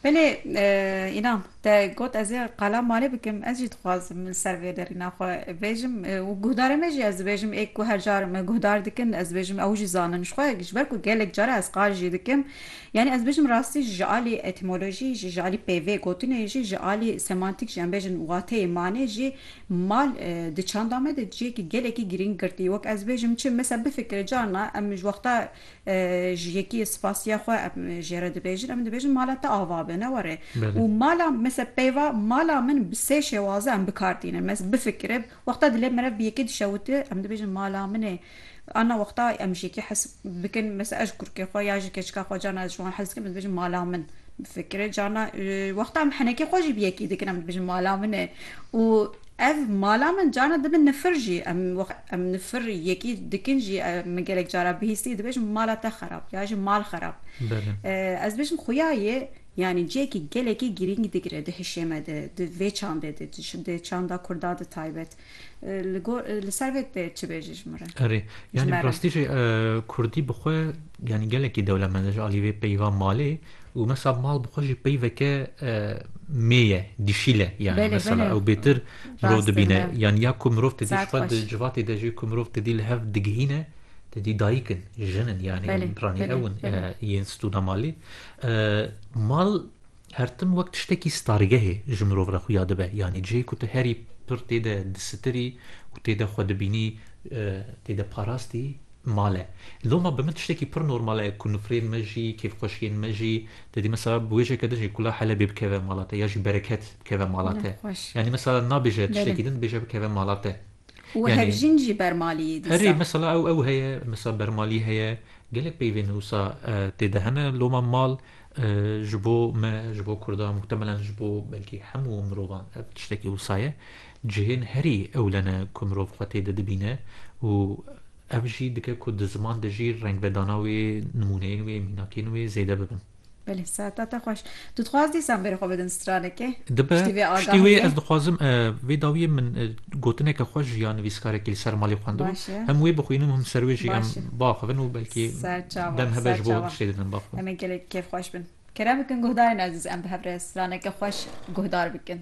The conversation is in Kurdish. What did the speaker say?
Belê Înan te got ez ê qala malê bikim ez jî dixwazim li ser vê derîna xwe bêjim û guhdarê me jî ez dibêjim ê ku her car me guhdar dikin ez dibêjim ew jî zanin ji xwe ji ber ku gelek cara ez qal jî dikim yanî ez dibêjim rastî ji alî etîmolojî jî ji alî pêvê gotinê jî ji alî semantîk jî em bêjin wateyê malê jî mal di çanda me de cihêkî gelekî girîng girtî wek ez dibêjim çi mesa bifikire carna em ji wexta Ji yekî spasiya xwe em jê re dibêjin, em dibêjin mala te ava be, ne were. Û mala mesela peyva mala min bi sê şêwaze em bi kar tînin. Mes bifikire wexta dilê min re bi yekê dişewite em dibêjin mala min e. Ana wexta em ji yekî hes bikin mesela ez ji kurikê xwe ya ji keçika xwe carna ez ji wan hes dikim em dibêjin mala min bifikire. Carna wexta em henekê xwe jî bi yekî dikin em dibêjin mala min e û. Ev mala min carna dibin nifir jî. Em wext em nifir yekî dikin jî min gelek cara bihîstî dibêjim mala te xerab ya jî mal xerab. Ez dibêjim xuya yê yanî cihekî gelekî girîng digire di hişê me de, di vê çandê de, di çanda kurda de taybet. Li gor li ser vê tê çi bêjî ji min re? Erê yanî bi rastî jî kurdî bi xwe yanî gelekî dewlemend e ji alî vê peyva malê. Û mesa mal bi xwe jî pey veke mê ye, dişîl e yanî mesela ew bêtir mirov dibîne. Yanî ya ku mirov tedî ji xwe di civatê de jî ku mirov tedî li hev digihîne tedî dayik in, jin in yanî ranî ew in yên stûna malê. Mal her tim wek tiştekî stargehê ji mirov re xuya dibe. Yanî cihê ku tu herî pir tê de disitirî û tê de xwe dibînî tê de parastî Male. Loma bi min tiştekî pir normal e ku nifrên me jî, kêfxweşiyên me jî dedî mesela bi wêjeke din jî ku la Helebê bikeve mala te ya jî bereket bikeve mala te. Yanî mesela nabêje tiştekî din bêje bikeve mala te. Û hevjîn jî bermaliyê dîsa. Herî mesela ew ew heye mesela bermalî heye gelek peyvên wisa tê de hene loma mal ji bo me ji bo kurdan muhtemelen ji bo belkî hemû mirovan ev tiştekî wisa ye. Cihên herî ewle ne ku mirov xwe tê de dibîne û ev jî dike ku di ziman de jî rengvedana wê, nimûneyên wê, mînakên wê zêde bibin. Belê, seta te xweş. Tu dixwaz dîsan bêrê xwe bidin stranekê? Dibe, Piştî vê piştî wê agahiyê? ez dixwazim vê dawiyê min gotineke xwe ji ya nivîskarekî li ser malê xwendibo. Baş e. Hem wê bixwînim hem ser wê jî em Baş e. biaxivin û belkî Ser çawa, dem hebe ser ji bo çawa. tiştê didim biaxivin. Em ê gelek kêfxweş bin. Kêre bikin guhdarên ezîz em bi hev re straneke xweş guhdar bikin.